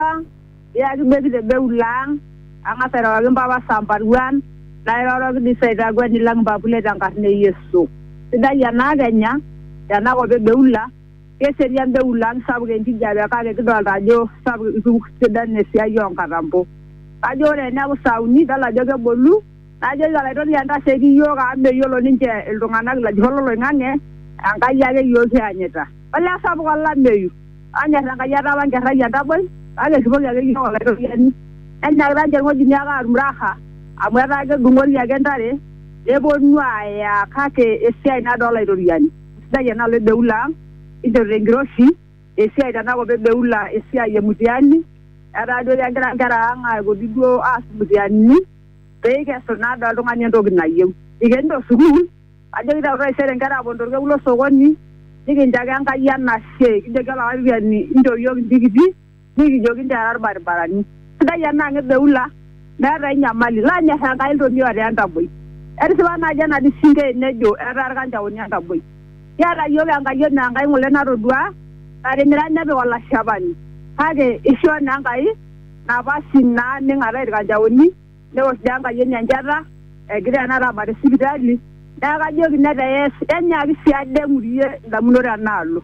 ang', iyaki beki te beul ang', ang'as airoroki mpapa Samparuan, nairoroki dii sii aitakueni lang' mpapule te nkarna e Yesu. Sidai ena akenya tena kop e Beula, keserian Beula ang' sapuk enkijape kake kidolta ajo sapuk itu sidanu esiai oo nkatambo. Kajo ore ene epu saa uni idol ajo kebolu. Najoki Olaitoriani, Ntasheiki iyiook amu meyiolo ninche iltung'ana ilajurrok lo loing'ang'e, Enkai ake iyiook kianyita. Olee sapuk olameyu! Onyor Enkai ataawa nkerra ai entaboi, kake erripoki ake iyiook Olaitoriani. Nenyaakita ninche ilng'ojini ake aatum raha amu etaa kedung'ori ake ntare nepuonu aaya kake esiai nado Olaitoriani. Eisidai ena alo e Beula ang, kinchorita enkiroshi esiai tena kop e Beula esiai e mutiani, etaa duo kegira nkera ang aipoti duo aas mutianini. pee ikesu naa doi oltung'ani entoki nayieu. Ikenito sukuul ajoki taa taisere inkera aaponu tolkekun lo sokoni nikinchaki Enkai enashe kijoki olaraiyani inchoo iyiook intikiti nikijoki inchoo era ilbaribarani. Sidai ena ang e Beula meeta ai nyamali. Lanyor Enkai iltomia otaa entaboi. Etisipa naaji ena disinkei nejo etaa ilkanjaoni entaboi. Kiata iyiook enkayioni aa Enkai ng'ole natoduaa natimira nepik olashepani kake eishoo naa Enkai. napashi naa ning'ataa ilkanjaoni neosh dii Enkai enye enchata egira tenakata aabaare sipitali neeku kajoki netees enyaaki sii ade aing'urie indamunot enaalo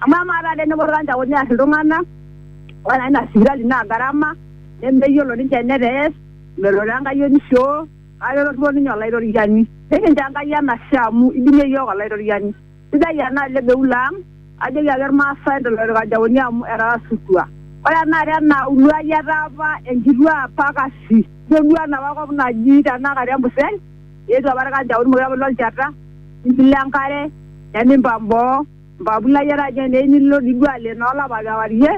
amu amaa taata tenepuo ilkanjaoni aar iltung'anak ore naa ina sipitali naa garama nemeyiolo ninche enetees melo taa Enkai onishioo kake ketorripo ninye Olaitoriani nikincho Enkai enashe amu idimie iyiook Olaitoriani. sidai ena ale beula ang ajoki ake irmaasai tolorikajaoni amu etaasutua ore enaata ena uluai etaa apa enkituaa apa kasi ijo duo enapa kop naji tenakata embusel eetuo apa irkanjaoni mokure apa ilo olchata nilo enkare nemimpang boo mpapulai etaa inye eneyieu nilo dii duo ale inoolapa kewarie.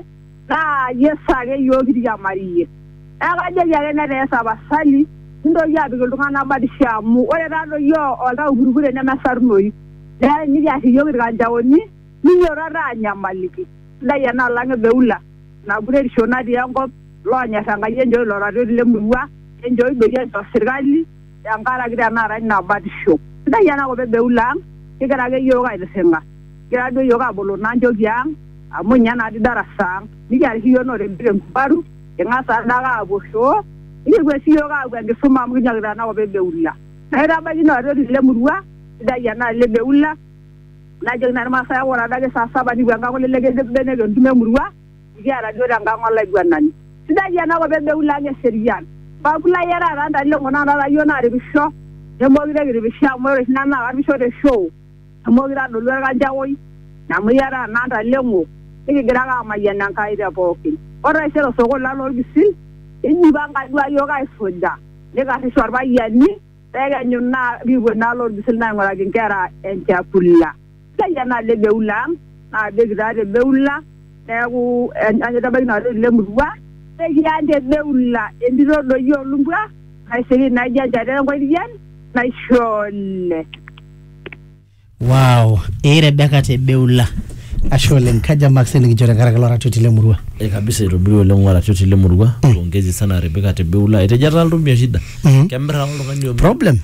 naa Yesu ake iyiook kiriamariyie. Neeku kajoki ake netaa tapasali mintoki aapik iltung'anak batisho amu ore taadoi iyiook oltau purupurri nemesarunoyu. Neeku enikiar iyiook ilkanjaoni ninyototo aanyamaliki. Sidai ena alang ebeula ina kuretisho natii enkop, iloonyor Enkai enchooki ilo ratioti le murua, enchooki doi enchoo sirkali. Tenkaraki tenakata ina batisho. Sidai ena kop e Beul ang, kigira ake iyiook aitirring'a. Kigira duo iyiook aboloo naa nchooki ang amu ninye naa dii darasa ang. Nikiata oshi iyiook note mbili enkubaru, king'as taa doi ake aapuo shoo, nikipuo sii iyiook aapuo enkisuma amu kinyokita ena kop e Beul ang. Naitabaiki ina oitoti le murua, sidai enaalo e Beul ang, najoki naa ilmaasai ake ore adake saa saba nikipuo enkang olelek eidip mbenek entumo e murua. Kiata duo tenkang olaiguanani. Sidai ena kop ebeu lang eserian. Paaku layiarak taa ntae leng'or naa taata yiok naaripisho nemookure kiripisho amu ore oshi nanu naa karipisho te show nemookure adolu olkanchaoi amu iyaraa naa ntae leng'or nikigira ake aamayian Enkai te pookin. Ore taisere osokoni lang lolpisil eijipanga duo ake yiok aisuja neikarrisho ilpayiani pee ekenyu naa nikipuo naa lolpisil naa aing'uraki nkera enchakula. Kaya naa le Beula ang', naajoki taa te Beula, neaku eanyita ebaiki naa olorere le murua, nekiany te Beula entito doi oo lumbwa naisiriri naijo enchata e nkoitien naishole. Wow, ee Rebecca te Beula. Ashe oleng, kaja marks nikincho tenkaraki ilo ratioti le murua? Eh, kabisa eitobirua oleng oratioti le murua pongezi sana Rebecca te Beula etejo etaa oltomia shida kemirr ake oltung'ani omir Problem?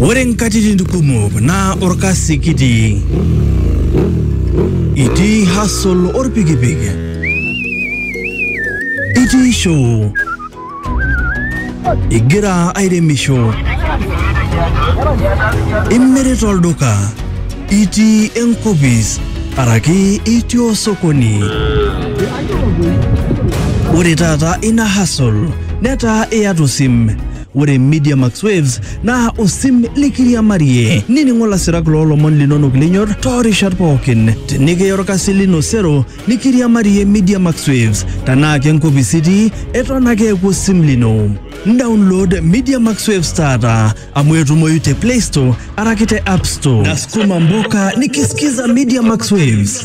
Ore nkatitin kumok naa orkasi kitii. Itii hustle orpikipik. Itii show. Igira airemisho. Imirita olduka. Itii enkopis araki itii osokoni. Ore taata ina hustle netaa iyata osim. Ore Media Max Waves naa osim likiriamarie. Nining'o lasirak loo lomon linonok linyor too rishat pookin. Tenikiya olkasi lino sero nikiriamarie Media Max Waves. Tenaa ke nkopis itii, eton ake eeku osim lino. Download Media Max Waves taata amu etumoyu te Play Store araki te App Store. Nasukuma mboka nikisikiza Media Max Waves.